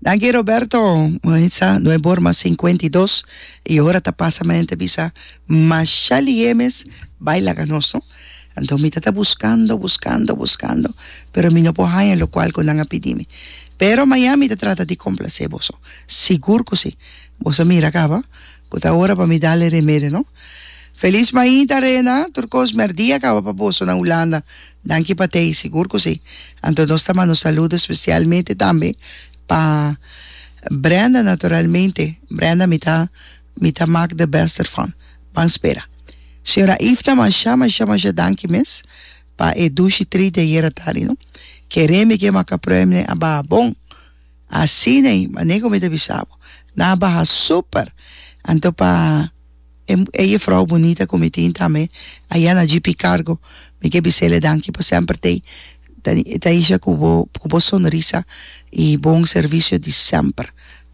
Danki Roberto, Maritza, no e bor mas cincuenta y dos y ora ta pasa mi a enta bisa masha lihe mes bay laga nos no anto mi ta ta buscando buscando buscando pero mi no por haya lo cual cu nan a pidi mi pero Miami ta trata di complace boso sigur cu si boso a mira caba cu ta ora pa mi dal e remedio no Feliz Maida Rena tur cos mi a rdia caba pa boso na Hulanda Danki pa tei, sigur ku si. Anto nos ta manda un saludo spesialmente tambe pa Brenda naturalmente, Brenda mi ta mi ta mak de bèst derfan. Ban spera. Señora Ifna masha masha masha danki mes pa e dushi trit di ayer atardi no. Kere mi ke maka pruebne a baha bon. Asin'ei, manera ku mi ta bisa bo. Nan a baha super. Anto pa. E jefrouw bunita ku mi tin tambe a yana GP kargo. Mi ke bisele danki pa semper tei Taisha ku bo ku bo sonrisa i bon servisio di semper.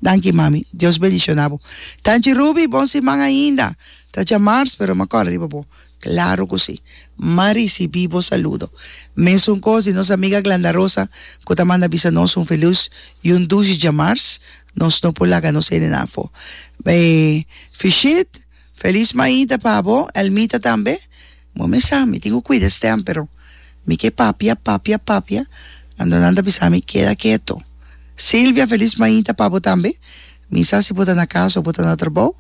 Danki mami. Dios bendishona bo. Tanchi Ruby bon siman ainda. Ta djamars pero mi a kòrda riba bo. Klaro ku si. M'a risibí bo saludo. Mesun kos di nos amiga Glanda Rosa ku ta manda bisa nos un felus i un dushi djamars. Nos no por laga nos hende nan fo. Bay fishit, Feliz Maida pa bo, Elmita tambe. Moe mi sa, mi tin cu cuida e stem, pero mi ke papia, papia, papia, anto nan ta bisa mi keda keto. Silvia, Feliz Maida pa bo tambe. Mi sa si bo ta na casa o bo ta na trabao,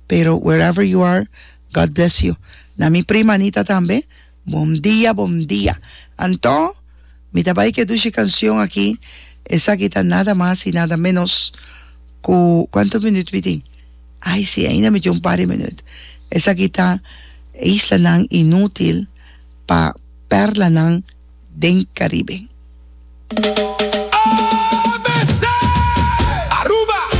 pero wherever you are, God bless you. Na mi prima Anita tambe. Bom dia bom dia Anto mi ta bai ke dushi kansyon aki esaki ta nada mas i nada menos ku kuantu minüt mi tin ai si ainda mi tin un par di minüt esaki ta E islanan inútil pa pèrlanan den Karibe.